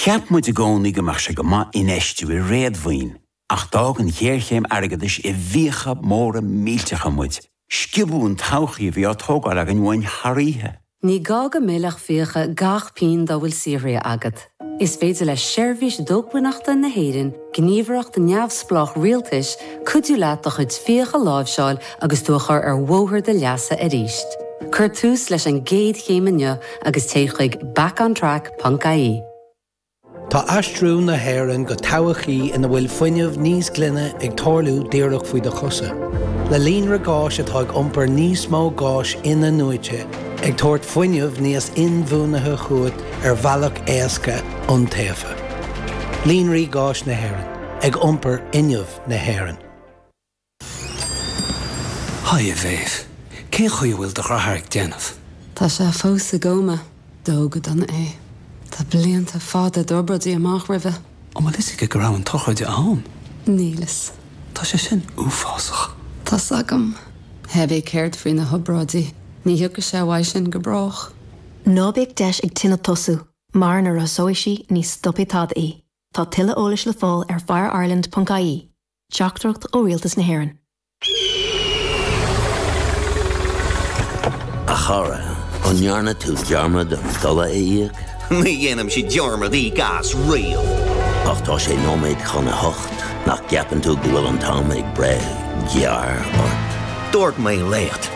Cheap muid i gcónaí go mbeadh sé go maith infheistiú i réadmhaoin, ach d'fhág an ghéarchéim airgeadais i bhfiacha móra millteacha muid, sciobadh an todhchaí a bhí á tógáil againn uainn thar oíche. Ní gá go millfeadh fiacha gach pingin dá bhfuil saothraithe agat. Is féidir le Seirbhís Dócmhainneachta na hÉireann gníomhaireacht neamhspleách rialtais, cuidiú leat do chuid fiach a láimhseáil agus tú a chur ar bhóthar do leasa arís. Cuir tús leis an gcéad chéim inniu agus téigh chuig backontrack.ie. Tá aistriú na hÉireann go todhchaí ina bhfuil fuinneamh níos glaine ag tarlú díreach faoi do chosa. Le líonra gáis atá ag iompar níos mó gáis in-athnuaite, ag tabhairt fuinneamh níos inbhuanaithe chugat ar bhealach éasca, iontaofa. Líonraí Gáis na hÉireann ag iompar fhuinneamh na hÉireann. Haigh a Mhéabh, cén chaoi a bhfuil do dheartháir ag déanamh? Tá sé fós i gcóma. Dódh go dona é. Tá blianta fada d'obráidí amach roimhe. An bhfuil fhios aige go raibh an tsochraid ann? Níl fhios. Tá sé sin uafásach. Tá 's agam. Éabha céard faoi na hobráidí? Ní thiocfaidh sé uaidh sin go brách. Ná bíodh deis ag tine tosú. Mar má lasóidh sí ní stopfaidh tada í. Tá tuilleadh eolais le fáil ar FireIreland ponc ie. Teachtaireacht ó Rialtas na hÉireann. A chara, an ndearna tú dearmad an dola a íoc? Ní dhéanaimse dearmad íoc as riamh. Ach tá sé nóiméad chun a hocht, nach gceapann tú go bhfuil an t-am ag breith gearr ort? Dúirt mé leat.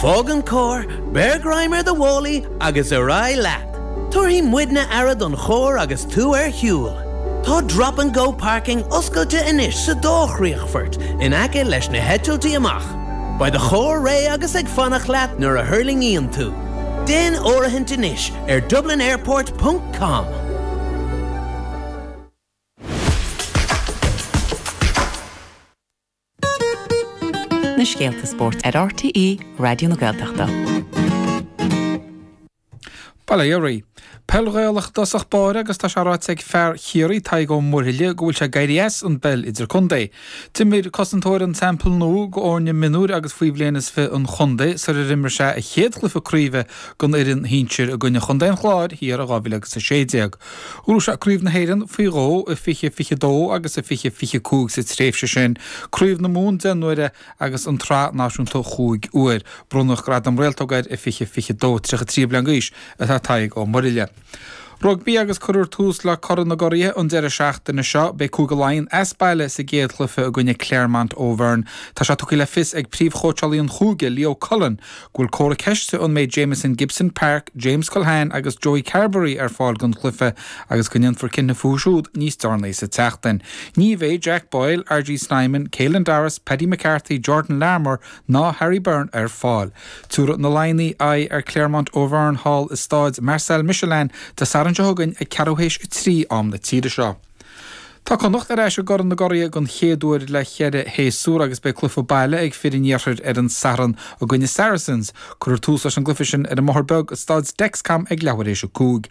Fág an carr, beir greim ar do mhálaí agus ar aghaidh leat. Tabharfaidh muidne aire don charr agus tú ar shiúl. Tá 'Drop and Go Parking' oscailte anois sa dá chríochfort in aice leis na heitiltí amach. Beidh do charr réidh agus ag fanacht leat nuair a thuirlingíonn tú. Déan áirithint anois ar dublinairport ponc com. Na scéalta spóirt ar RTÉ Raidió na Gaeltachta. Ballyheirí. Peil Ghaelach dtosach báire agus tá sé ráite ag fear Chiarraí, Tadhg Ó Muirthile, go bhfuil sé ag éirí as an bpeil idirchontae. D'imir cosantóir an Teampaill Nua d'fhoirne mionúir agus faoi bhliain is fiche an chontae sar ar imir sé a chéad chluiche craoibhe don fhoireann shinsir i gcoinne Chontae an Chláir thiar i 2016. Bhuaigh sé Craobh na hÉireann faoi dhó, i 2022 agus i 2025 sa tréimhse sin, Craobh na Mumhan deich n-uaire agus an tSraith Náisiúnta chúig uair. Bronnadh gradam réaltóige air i 2022. 33 bliain d'aois atá Tadhg Ó Muirthile. Rugbaí agus cuirfear tús le Corn na gCuradh an deireadh seachtaine seo. Beidh Cúige Laighean as baile sa gcéad chluiche i gcoinne Clermont Auvergne. Tá sé tugtha le fios ag príomhchóitseálaí an chúige, Leo Cullen, bhfuil comhartha ceiste an mbeidh Jamison Gibson Park, James Culhane agus Joey Carbery ar fáil don chluiche agus go ndéanfar cinneadh fúthu siúd níos deireanaí sa tseachtain. Ní bheidh Jack Boyle, RG Snyman, Caelan Doris, Paddy McCarthy, Jordan Larmour ná Harry Byrne ar fáil. Tiúrfaidh na Laighnigh aghaidh ar Clermont Auvergne thall i Stáid Marcel Michelin Dé Sathairn seo chugainn ag ceathrú théis a trí, am na tíre seo. Tá Connacht ar ais i gCorn na gCuraithe den chéad uair le ceithre shéasúr agus beidh cluiche baile ag fir an iarthair ar an Satharn i gcoinne Saracens. Cuirfear tús leis an gcluiche sin ar an mBóthar Beag i Stáid Dexcom ag leathuair éis a cúig.